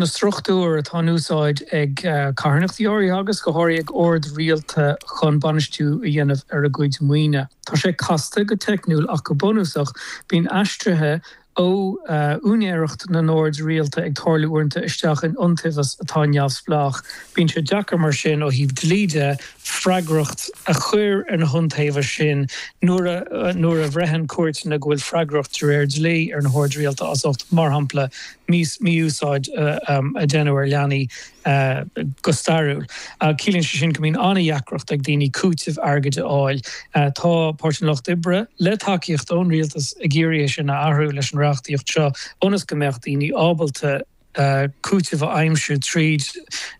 na struchtúir atá in úsáid ag carthanachtaí áirithe agus go háirithe ag oird rialta chun bainistiú a dhéanamh ar a gcuid maoine. Tá sé casta go teicniúil ach go bunúsach bíonn aistrithe ó úinéireacht na n-oird rialta ag tarlú uaireanta isteach in iontaobhas atá neamhspleách. Bíonn sé deacair mar sin ó thaobh dlí de freagracht a chur ar na hiontaobhais sin nuair a nuair a bhreithníonn cúirteanna go bhfuil freagracht de réir dlí ar na hoird rialta as ucht, mar shampla, mí-úsáid a déanadh ar leanaí go stairiúil. Ciallaíonn sé sin go mbíonn an-dheacracht ag daoine cúiteamh airgid a fháil. Tá Páirtí an Lucht Oibre, le tacaíocht ón rialtas, ag iarraidh é sin a athrú leis an reachtaíocht seo ionas go mbeadh daoine ábalta cúiteamh a aimsiú tríd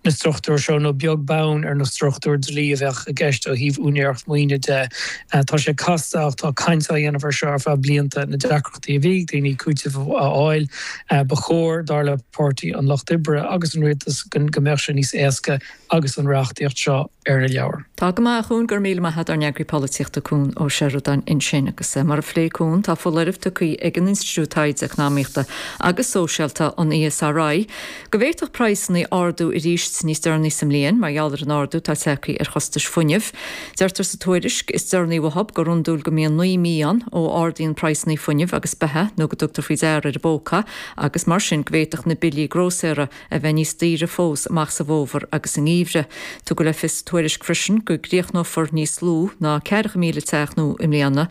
na struchtúir seo nó beag beann ar na struchtúir dlí a bheadh i gceist ó thaobh úinéireacht maoine de. Tá sé casta ach tá caint á déanamh ar seo ar feadh blianta. atá ag daoine cúiteamh a fháil. Ba chóir, dar le Páirtí an Lucht Oibre agus an rialtas, go mbeadh sé níos éasca agus an reachtaíocht seo ar na leabhair. Tá go maith, a Chuain, go raibh míle maith agat, ár n-eagraí polaitíochta Cuan Ó Seireadáin ansin. Agus mar a phléigh Cuan, tá foláireamh tugtha ag an Institiúid Taighde Eacnamaíochta agus Sóisialta, an ESRI, Go bhféadfadh praghsanna ardú arís níos deireanaí sa mbliain mar gheall ar an ardú atá tagthaí ar chostais fuinnimh. Deirtear sa tuairisc is deireanaí uathu gur iondúil go mbíonn naoi mí ann ó ardaíonn praghsanna fuinnimh agus beatha nó go dtugtar faoi deara ar an bpóca agus mar sin go bhféadfadh na billí grósaera a bheith níos daoire fós amach sa bhfómhar agus sa ngeimhreadh. Tugadh le fios sa tuairisc freisin go gcríochnófar níos lú ná ceathracha míle teach nua i mbliana,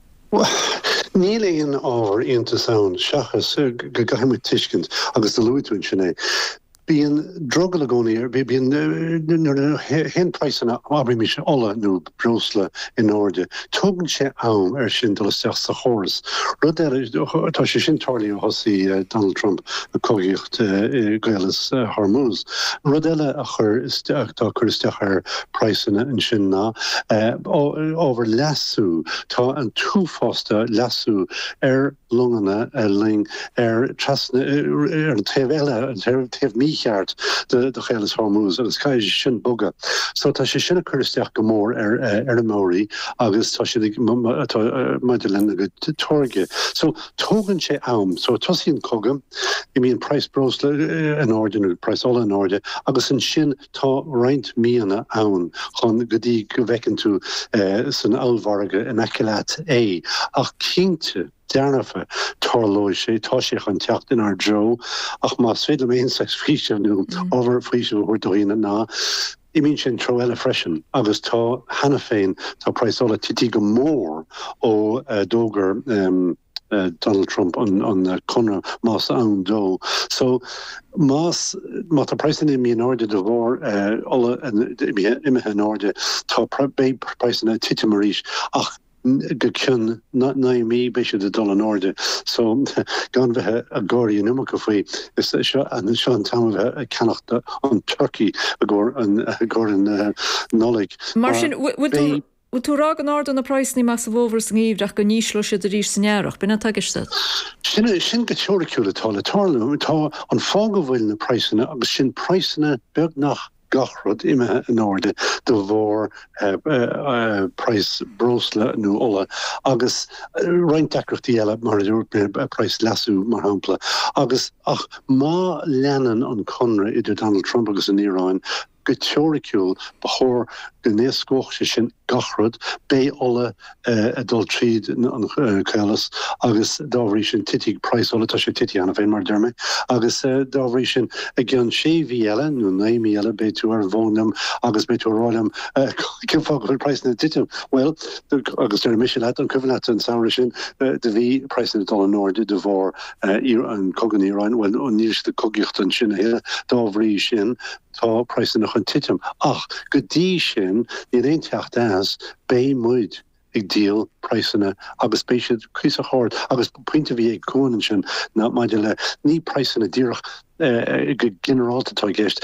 Níl aon ábhar iontais ann seachas go gcaithfidh muid tuiscint agus luaigh tú ansin é. Bíonn lag i gcónaí ann, bíonn nuair a théann praghsanna abraimis ola nó breosla in airde, tógann sé am ar sin dul isteach sa chóras. Rud eile, tá sé sin tarlaithe ó thosaigh Donald Trump ag cogaíocht i gCaolas Hormuz. Rud eile a chuir atá ag cur isteach ar praghsanna ansin ná ábhar leasaithe. Tá an t-uafás de leasú ar longanna ina luí ar trasna ar an taobh eile, an taobh mícheart de Chaolas Hormuz agus caithfidh sin bogadh. So tá sé sin ag cur isteach go mór ar fheirmeoirí agus tá siad ag maidir lena gcuid táirge. So tógann sé am. So tosaíonn cogadh, imíonn praghas breosla in airde nó praghas ola in airde agus ansin, Tá roinnt míonna ann chun go dtí go bhfeiceann tú san ollmhargadh in aice leat é, ach cinnte dearfa tarlóidh sé, tá sé chun teacht inár dtreo. Ach más féidir liom aon saghas faoiseamh nó ábhar faoisimh a thabhairt do dhaoine ná, imíonn sé an treo eile freisin agus tá, cheana féin, tá praghas ola tite go mór ó d'fhógair. Donald Trump an conradh más ann dó. So más má tá praghsanna imithe in airde de bharr ola imithe imithe in airde tá beidh praghsanna ag titim arís ach go cionn naoi mí beidh siad ag dul in airde. So gan bheith ag gáirí an iomarca faoi is seo an seo an t-am a bheith ag ceannacht an turcaí i gcomhair an gcomhair an Nollaig. Mar sin bhfuil tú Bhfuil tú ag rá go n-ardóidh na praghsanna amach sa bhfómhar is sa ngeimhreadh ach go n-ísleoidh siad arís san earrach? B'in é atá i gceist agat? Sin é sin go teoiriciúil atá le tarlú. Tá, an fáth go bhfuil na praghsanna, agus sin praghsanna beagnach gach rud, imithe in airde de bharr praghas breosla nó ola agus roinnt deacrachtaí eile, mar a dúirt mé, praghas leasú mar shampla. Agus ach má leanann an conradh idir Donald Trump agus an Iaráin, Go teoiriciúil, ba chóir go n-éascódh sé sin gach rud. Beidh ola ag dul tríd an gcaolas agus dá bhrí sin titfidh praghas ola, tá sé ag titim cheana féin mar a dúirt mé, agus dá bhrí sin i gceann sé mhí eile nó naoi mí eile beidh tú ar an bhfón liom agus beidh tú ag rá liom cén fáth go bhfuil praghsanna ag titim. Bhuel, agus déarfaidh mise leat, an cuimhin leat an samhradh sin, do bhí praghsanna ag dul in airde de bharr an cogadh in Iaráin, bhuel níl siad ag cogaíocht ansin a thuilleadh, dá bhrí sin Tá praghsanna chun titim ach go dtí sin níl aon teacht as, beidh muid ag díol praghsanna agus beidh siad cuíosach ard agus pointe a bhí ag Cuan ansin ná maidir le, ní praghsanna díreach go ginearálta atá i gceist,